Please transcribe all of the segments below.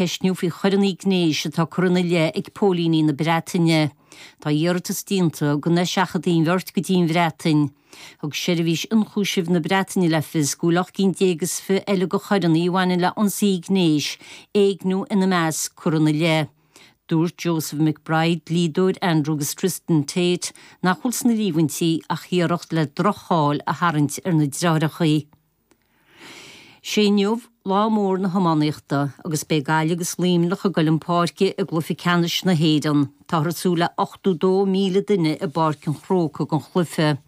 ceistniú faoi choireanna gnéis atá curtha ina leith ag póilíní na Breataine. Tá iarratas déanta go n-eiseachadfaí an bheirt go dtí an Bhreatain. Thug Seirbhís Ionchúisimh na Breataine le fios go bhfuil ocht gcinn déag is fiche eile de choireanna a bhaineann le ionsaithe gnéis, éigniú ina measc, curtha ina leith. Dúirt Joseph McBride, dlíodóir Andrew agus Tristan Tate, nach bhfuil sna líomhaintí ach iarracht le droch-cháil a tharraingt ar na deartháireacha. Sé inniu lá mór na hiománaíochta agus beidh Gaillimh agus Luimneach ag dul chun páirce i gcluiche ceannais na hÉireann. Táthar ag súil le 82,000 duine i bPáirc an Chrócaigh don chluiche.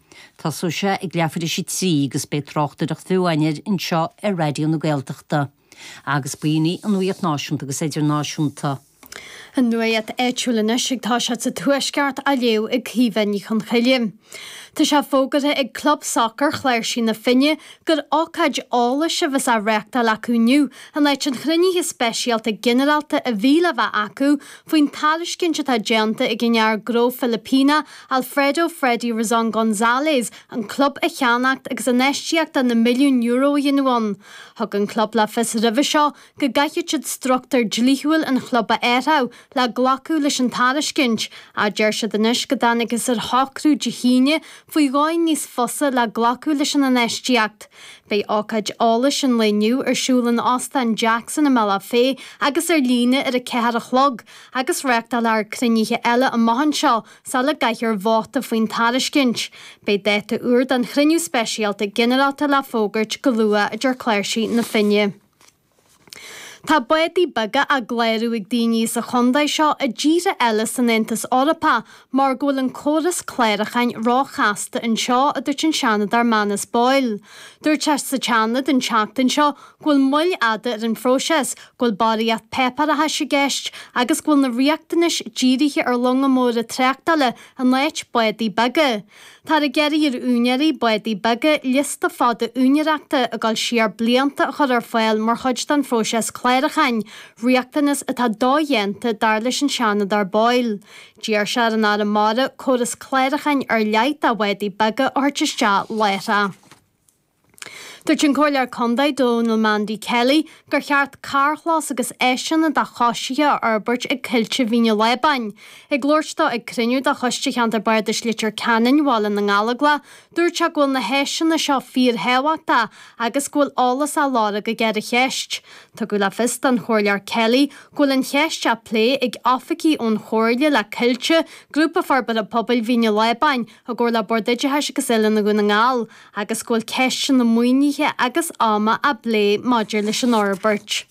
Tosóidh sé ag leathuair tar éis a trí agus beidh tráchtaireacht bheo againn air anseo ar Raidió na Gaeltachta. Agus b'in í an nuaíocht náisiúnta agus Idirnáisiúnta. An nuaíocht áitiúil anois agus tá sí sa Tuaisceart á léamh ag Caoimhe Ní Chonchoille. Tá sé fógartha ag Club Sacair Chláirsí na Finne gur ócáid eolais a bheas á reáchtáil acu inniu in áit an chruinnithe speisialta ghinearálta a bhí le bheith acu faoin tairiscint atá déanta ag an fhear gnó Filipíneach Alfredo Freddy Rizon Gonzalez an club a cheannacht agus infheistíocht de na milliúin Euro a dhéanamh ann. Thug an club le fios roimhe seo go gcaithfeadh siad struchtúr dlíthiúil an chlub a athrú le glacadh leis an tairiscint, ach deir siad anois go dtángthas ar shocrú Dé hAoine faoi dhóigh níos fusa le glacadh leis an infheistíocht. Beidh ócáid eolais an lae inniu ar siúl in Óstán Jackson i mBealach Féich agus ar líne ar a ceathair a chlog, agus reáchtálfar cruinnithe eile amach anseo. Sula gcaithfear vóta faoin tairiscint. Beidh dáta úr don chruinniú speisialta ghinearálta le fógairt go luath, a deir Cláirsigh na Finne. Tá bádaí beaga á gclárú ag daoine sa chontae seo i dtíortha eile san Aontas Eorpach mar go bhfuil an córas cláracháin róchasta anseo, a dúirt an Seanadóir Manus Boyle. Dúirt sé sa tSeanad an tseachtain seo go bhfuil moill fhada ar an phróiseas, go bhfuil barraíocht páipéarachais i gceist agus go bhfuil na riachtanais dírithe ar longa móra tráchtála in áit bádaí beaga. Táthar ag iarraidh ar úinéirí bádaí beaga liosta fada úinéireachta ag gabháil siar blianta a chur ar fáil mar chuid den phróiseas clárúcháin, riachtanas atá dodhéanta, dar leis an Seanadóir Boyle. D'iarr sé ar an Aire Mara córas clárúcháin ar leith do bhádaí beaga a thabhairt isteach láithreach. Dúirt an Comhairleoir Contae, Donal Mandy Kelly, gur cheart carrchlós agus áiseanna do choisithe a fhorbairt ag Coillte Mhín an Lábáin. Ag labhairt dó ag cruinniú de Choiste Cheantar Bardais Leitir Ceanainn Bhaile na nGallóglach, dúirt sé go bhfuil na háiseanna seo fíorthábhachtach agus go bhfuil eolas á lorg aige ar an cheist. Tugadh le fios don Chomhairleoir Kelly go bhfuil an cheist á plé ag oifigigh ón Chomhairle le Coillte, Grúpa Forbartha Pobail Mhín an Lábáin, i gcomhar le Bord Oideachais agus Oiliúna Dhún na nGall, agus go bhfuil ceisteanna maoinithe agus ama á bplé maidir leis an fhorbairt.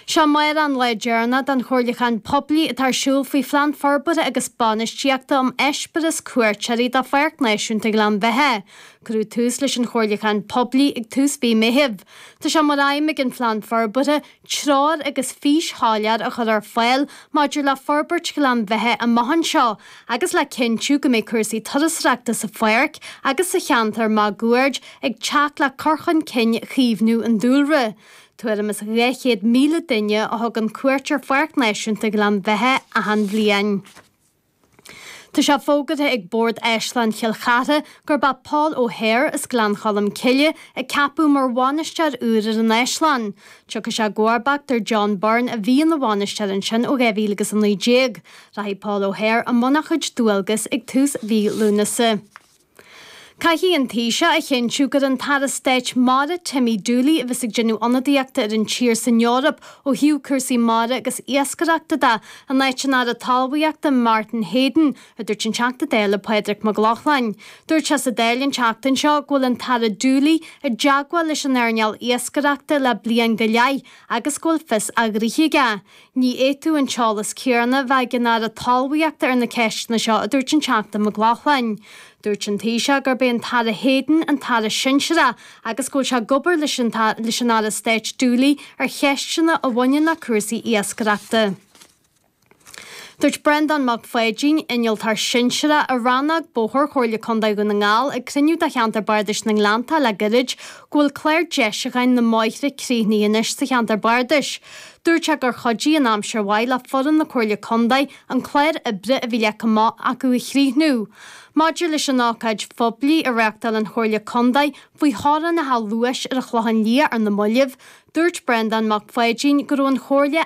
Is é amárach an lá deireanach den chomhairliúchán poiblí atá ar siúl faoi Phlean Forbartha agus Bainistíochta um Eispéireas Cuairteoirí do Pháirc Náisiúnta Ghleann Bheithe. Cuireadh tús leis an chomhairliúchán poiblí ag tús mhí Meithimh. Tá sé mar aidhm ag an Phlean Forbartha, treoir agus fís shoiléir a chur ar fáil maidir le forbairt Ghleann Bheithe amach anseo agus le cinntiú go mbeidh cúrsaí turasóireachta sa Pháirc agus sa cheantar máguaird ag teacht le cur chun cinn chaomhnú an dúlra. Tuairim is 200,000 duine a thugann cuairt ar Pháirc Náisiúnta Ghleann Bheithe achan bhliain. Tá sé fógartha ag Bord Áislann Chill Chartha gurb é Paul O'Hare as Gleann Cholm Cille a ceapadh mar bhainisteoir úr ar an Áislann. Tiocfaidh sé i gcomharbacht ar John Byrne a bhí ina bhainisteoir ansin ó 2019. Rachaidh Paul O'Hare i mbun a chuid dualgas ag tús mhí Lúnasa. Caithfidh an Taoiseach a chinntiú gur an tAire Stáit Mara Timmy Dooley, a bheas ag déanamh ionadaíochta ar an tír san Eoraip ó thaobh cúrsaí mara agus iascaireachta de, in áit an Aire Talmhaíochta Martin Heydon, a dúirt an Teachta Dála Pádraig Mac Lochlainn. Dúirt sé sa Dáil an tseachtain seo go bhfuil an tAire Dooley i dteagmháil leis an earnáil iascaireachta le bliain go leith agus go bhfuil fios a ghnoithe aige. Ní fhéadfadh an t-eolas céanna a bheith ag an Aire Talmhaíochta ar na ceisteanna seo, a dúirt an Teachta Mac Lochlainn. Dúirt an Taoiseach gurb é an tAire Heydon an tAire sinsearach agus go bhfuil sé ag obair leis an Aire Stáit Dooley ar cheisteanna a bhaineann le cúrsaí iascaireachta. Dúirt Breandán Mac Pháidín, Innealtóir Sinsearach i Rannóg Bóthair Chomhairle Contae Dhún na nGall, ag cruinniú de Cheantar Bardais na nGleannta le gairid go bhfuil clár deisiúcháin na mbóithre críochnaithe anois sa cheantar bardais. Dúirt sé gur chuidigh an aimsir mhaith le foireann na Comhairle Contae an clár oibre a bhí leagtha amach acu a chríochnú. Maidir leis an ócáid phoiblí a reáchtáil an Chomhairle Contae faoi theorainneacha luais ar an Chlochán Liath ar na mallaibh, dúirt Breandán Mac Pháidín go raibh an Chomhairle